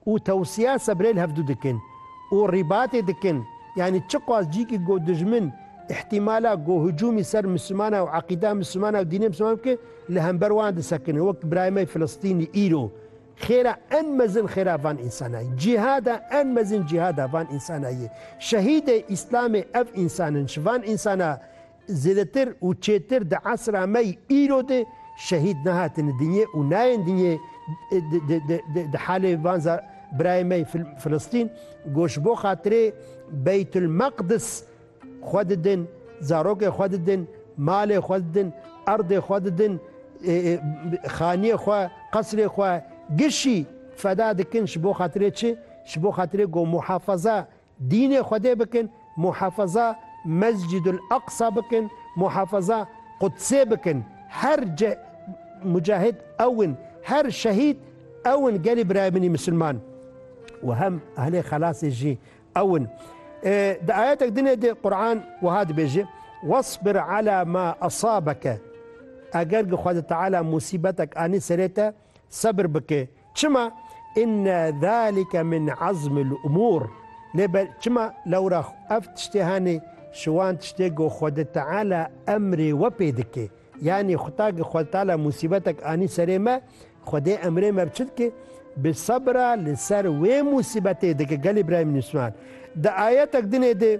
û tewsiya sebrê li hev du dikin û rîbatê dikin, yanî çiqas cîkî ku dijmin îhtîmala ku hicûmî ser Mislimanan û eqîda Mislimanan û dînê Mislimanan bike, li hember wan disekine, wek birayê me Filistînî îro xêra en mezin xêra van însanan ye, cîhada en mezin cîhada van însanan ye, şehîdê Îslamê ev însan in, ji van însana Zêdetir û çêtir di esra me yî îro de şehîd nehatine dinyê û nayên dinyê di halê van birayên me yê Filistîn ku ji bo xatirê Beytulmeqdis xwe didin, zarokên xwe didin, malê xwe didin, erdê xwe didin, xaniyê xwe, qesrê xwe, gişî feda dikin ji bo xatirê çi? Ji bo xatirê ku muhafeza Dînê Xwedê bikin, muhafaza Mescidul Aqsa bikin, muhafaza Qudsê bikin. Her ce mucahid ew in, her şehîd ew in gelê birayê min ê misilman û hem ehlê xelasê jî ew in. Di ayetek din ê de Quran wiha dibêje, Wasbir ala ma asabeke, eger gi Xwedê Teala musîbetek anî serê te, Sebir bike. Çima? Inne zalike min azmil umur. Lê be çima? Lewra xwe. Ev tiştê hene ji wan tiştê ku Xwede Teala emrê we pê dike. Yanî xuta ku Xwede Teala musîbetek anî serê me, Xwedê emrê me bi çi dike? Bi sebira li ser wê musîbetê dike. Gelê birayên Misliman. Di ayetek dinê de.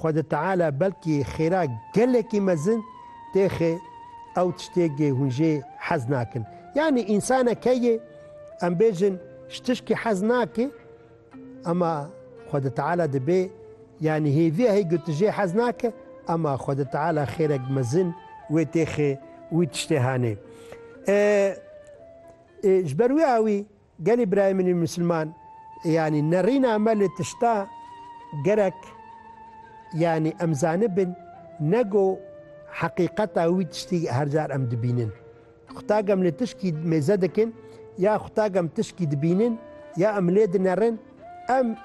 Xwedê Teala belkî xêra gelekî mezin têxê ew tiştêgê hûn jê hez nakin. Yanî însane keyê em bêjin ji tişkî hez nake ema Xwedê Teala dibê yanî hêviya hê ku tu jê hez nake ema Xwedê Teala xêrek mezin wê têxê wî tiştê hanê. Ji ber wî awî. Gelê birayê min ê misilman yanî nerîna me li tişta gerek yanî em zanibin ne go heqîqeta wî tiştî her car em dibînin. Qutak em li tişkî mêze dikin ya qutak em tişkî dibînin ya em lê dinerin em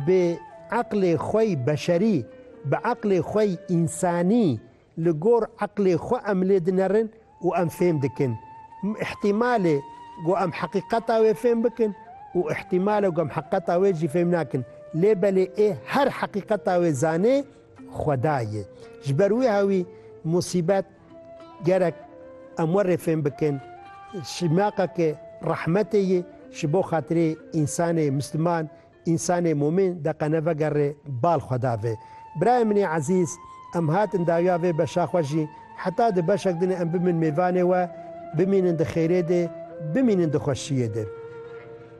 bi eqlê xwe yî beşerî, bi eqlê xwe yî însanî Li gor eqlê xwe em lê dinerin û em fêm dikin. Îhtîmal e ku em heqîqeta wê fêm bikin û îhtîmal e ku em heqeta wê jî fêm nakin. Lê belê ê her heqîqeta wê zanê Xweda ye. Ji ber wiha wî musîbet gerek em werê fêm bikin şimaqa ke rehmetê ye ji bo xatirê însanê misliman Însanê mûmîn de qe nevegerê bal xwe davê. Birayê min ê ezîz, em hatin dawiya vê beşa xwe jî, heta di beşek din em bimin mêvanê we, bimînin di xêrê dê, bimînin di xweşiyê dê.